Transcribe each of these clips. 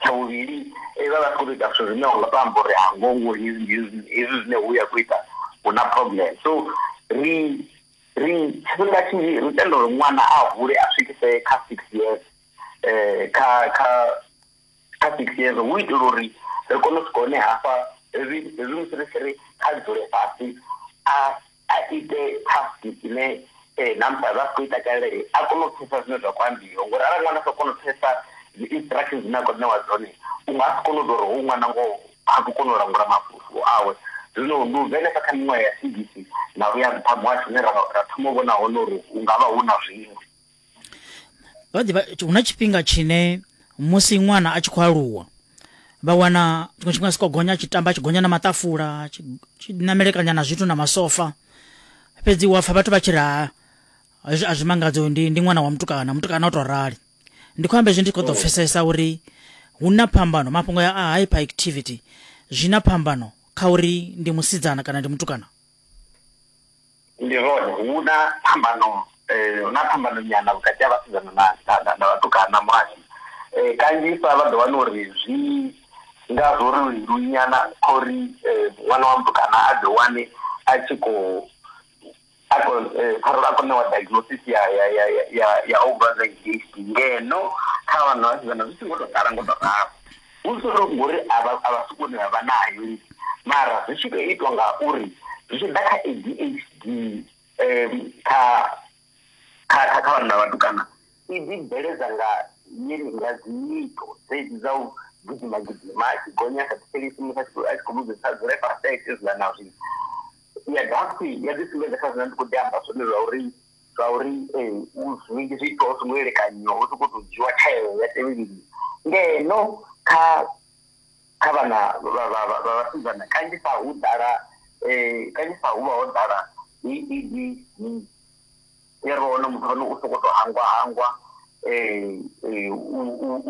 tsha vhuvhili eh, vha vha tshi khou tou ita zwithu zwine unga to amba uri hango ngo hezwi hezwi hezwi zwine hu ya khou ita hu na problem so ri ri tshifhinga tshinzhi ri tenda uri ṅwana a hule a swikise kha six years um kha kha kha six years hu itela uri ri kone u swika hone hafha hezwi hezwi musi ri tshi ri kha dzule fhasi a a ite task ine eh, na musi a vha khou ita kale a kone u pfesa zwine zwa khou ambiwa ngori arali ṅwana sa kona u pfesa dzi-instructions dzine a khou ṋewa dzone u nga si kone u tou ri hoyu ṅwana ngoho ha khou kona u langula mafulufulo awe zwino ndi u bvenesa kha miṅwaha ya sigisi na uya nṱha muhasho une ra thoma u vhona hone uri hu nga vha hu na zwiṅwe vha ḓivha hu na tshifhinga tshine musi ṅwana a tshi khou aluwa vha wana tshiṅwe tshifhinga si khou gonya tshi tamba tshi gonya na maṱafula tshi namelekanya na zwithu na masofa fhedzi wa pfha vhathu vha tshi ri ha a zwi mangadzi uyu ndi ndi ṅwana wa mutukana mutukana o tou rali ndi khou amba izwi ndi khou ḓo oh. pfesesa uri hu na phambano mafhungo ya a hyper activity zwi na phambano kha uri ndi musidzana kana ndi mutukana Ndi zwone hu na phambano hu na phambano nyana vhukati ha vhasidzana na na na vhatukana muhasho kanzhisa vha ḓo wana uri zwi nga zwo ri leluwi nyana kha uri ṅwana wa mutukana a ḓi wane a tshi khou a kho ṱhaṅwe a kho ṋewa diagnosis ya ya ya ya ya ovha na H_I_V ngeno kha vhana vhasidzana zwi songo tou ḓala ngo to ralo. Hu solo ngori a vha a vha si vhone vha vha nayo lini mara zwi tshi tou itwa nga uri zwi tshi ḓa kha ADHD kha kha kha kha vhanna vhatukana i ḓi bveledza nga yene nga dzi nyito dzedzi dza u gidima gidima a tshi gonya a sa thetshelesi musi a tshi a tshi khou vhudza sa dzule fhasi a ite zwiḽa na zwiḽa. Ya dovha futhi ya ḓi sumbedza kha zwine nda ndi khou ḓi amba zwone zwa uri. zwauri zwinzhi zwiitwa hu songo elekanyiwa hu sokou tou dzhiwa tsheo ya tevheliwa ngeno kha kha vhana vha vhasidzana kanzhisa hu ḓala kanzhisa hu vha ho ḓala ya ri wana muthu ane u sokou tou hangwa hangwa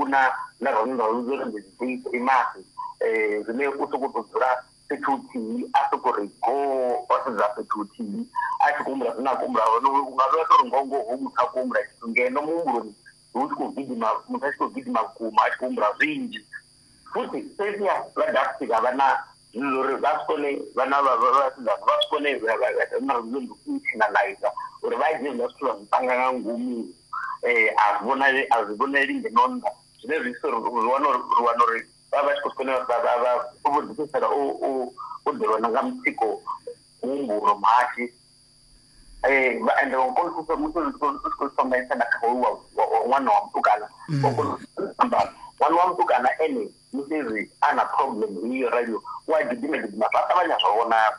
u na na ro no ri ndi dzi grimas zwine u sokou tou dzula fhethu huthihi a sokou ri goo o sedza fhethu huthihi a tshi khou humbula zwine a khou humbula hone u nga vhea tori ngongo ho muthu a khou humbula tshithu ngeno muhumbuloni hu tshi khou gidima muthu a tshi khou gidima vhukuma a tshi khou humbula zwinzhi futhi fhedziha vha dafti vha vha na zwino uri vha si kone vhana vha vhasidzana vha si kone na lulendo internaliza uri vha dzhie zwiḽa zwithu vha zwi panga nga ngomu um a zwi vhonali a zwi vhonali ngeno nnḓa zwine zwi ita uri ri wana uri ri wana uri vha vha vha tshi khou fanela uri vha vha vha vho ḓifhedzisela u u u ḓivhona nga mutsiko muhumbulo muhashu um ende wa kona u musi u tshi khou thomesa na kha hoyu wa ṅwana wa mutukana wa mm. kona amba ṅwana wa mutukana ene musi ri a na problem iyo radio wa gidima gidima vha ṱavhanya zwa vhonala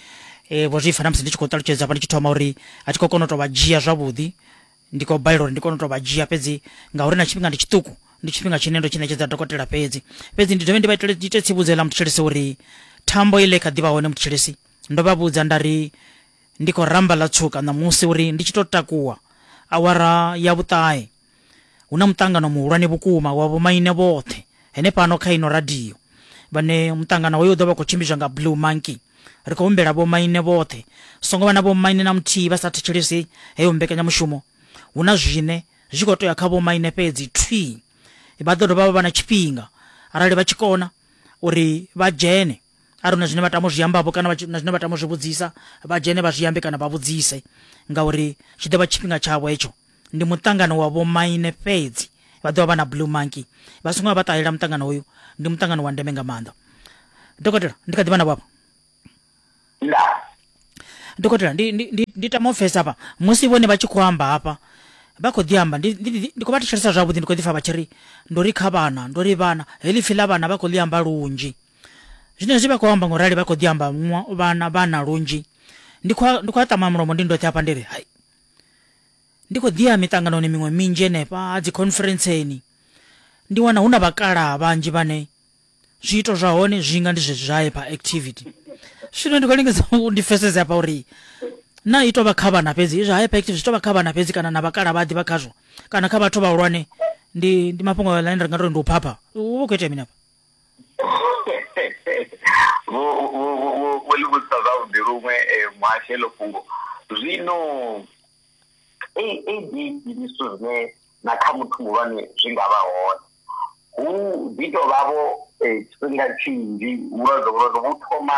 e, vho zwi fana musi ndi tshi khou ṱalutshedza vha ndi tshi thoma uri a thi khou kona u to vha dzhia zwavhuḓi ndi khou balela uri ndi kone u to vha dzhia fhedzi ngauri na tshifhinga ndi tshiṱuku ndi tshifhinga tshine ndo tshi ṋetshedza dokotela fhedzi fhedzi ndi dovhe ndi vha itele ite tsivhudzo ḽa mutshilisi uri thambo ile kha ḓivha hone mutshilisi ndo vha vhudza nda ri ndi khou ramba ḽa tswuka ṋamusi uri ndi tshi to takuwa awara ya vhuṱahe Hu na muṱangano muhulwane vhukuma wa vhomaine vhoṱhe henefhano kha ino radio vhane muṱangano hoyo u ḓo vha khou tshimbidzwa nga Blue Monkey. Ri khou humbela vhomaine vhoṱhe, songo vha na vhomaine na muthihi vha sa thetshelesi heyo mbekanyamushumo. Hu na zwine zwi khou tea kha vhomaine fhedzi thwi. Vha ḓo dovha vha vha na tshifhinga arali vha tshi kona uri vha dzhene arali na zwine vha tama u zwi ambavho kana na zwine vha tama u zwi vhudzisa vha dzhene vha zwi ambe kana vha vhudzise ngauri tshi ḓo vha tshifhinga tshavho hetsho. ndi muṱangano wa vhomaine fhedzi vha ḓovha vha na blue monkey vha songo vha ṱalela muṱangano uyu ndi muṱangano wa ndeme nga maanḓa dokotela ndi kha ḓivha na vhapa dokotela ndi, ndi, ndi, ndi tama ofesa hafha musi vhone vha tshi khou amba hafha vha khou ḓi amba ndi khou vha thetshelesa zwavhuḓi ndi khou ḓi pfa vha tshi ri ndo ri kha vhana ndo ri vhana heḽi pfi ḽa vhana vha khou ḽi amba lunzhi zwine zwi vha khou amba ngorali vha khou ḓi amba vhana vhana lunzhi ndi khou a ṱama mulomo ndi ndoṱhe hafha ndi ri hai Ndi khou ḓi ya miṱanganoni miṅwe minzhi henefha ha dzikhonferentseni, ndi wana hu na vhakalaha vhanzhi vhane zwiito zwa hone zwi nga ndi zwezwi zwa hyperactivity. Zwino ndi khou lingedza u ndi pfesese hafha uri na i tou vha kha vhana fhedzi, izwi hyperactivity zwi tou vha kha vhana fhedzi kana na vhakalaha vha ḓivha khazwo kana kha vhathu vhahulwane ndi ndi mafhungo ane ri nga tou ri ndi u phapha. Hu vha hu khou itea mini hafha? vho vho vho vho ḽi vhudzisa zwavhuḓi luṅwe eh, muhashi heḽo fhungo zwino adhd ndi zwithu zwine na kha muthu muhulwane zwi nga vha hone hu ḓi tou vhavho eh, tshifhinga tshinzhi vhulwadze vhulwadze vhu thoma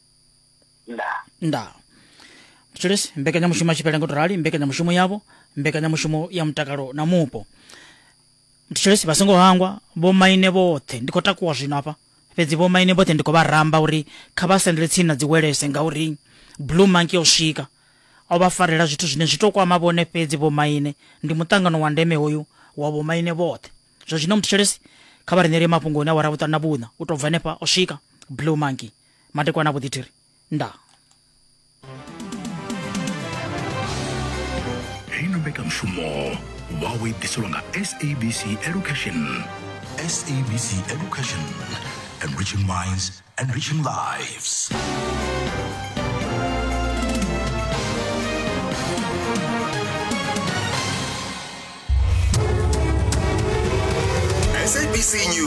nda nda mutshilisi mbekanyamushumo ya tshipele ngo to rali mbekanyamushumo yavho mbekanyamushumo ya mutakalo na mupo mutshilisi vha songo hangwa vho maine vhoṱhe ndi khou takuwa zwino hafha fhedzi vho maine vhoṱhe ndi khou vha ramba uri kha vha sendele tsini na dziwelese ngauri blue monkey o swika o vha farela zwithu zwine zwi to kwama vhone fhedzi vho maine ndi muṱangano wa ndeme hoyu wa vho maine vhoṱhe zwa zwino mutshilisi kha vha ri ṋeele mafhungo une awara vhuṱanu na vhuṋa u tou bva henefha o swika blue monkey madekwana vho ḓithiri nda heino mbekanyamushumo wawe i ḓiselwa nga sabc education sabc education enriching minds enriching lives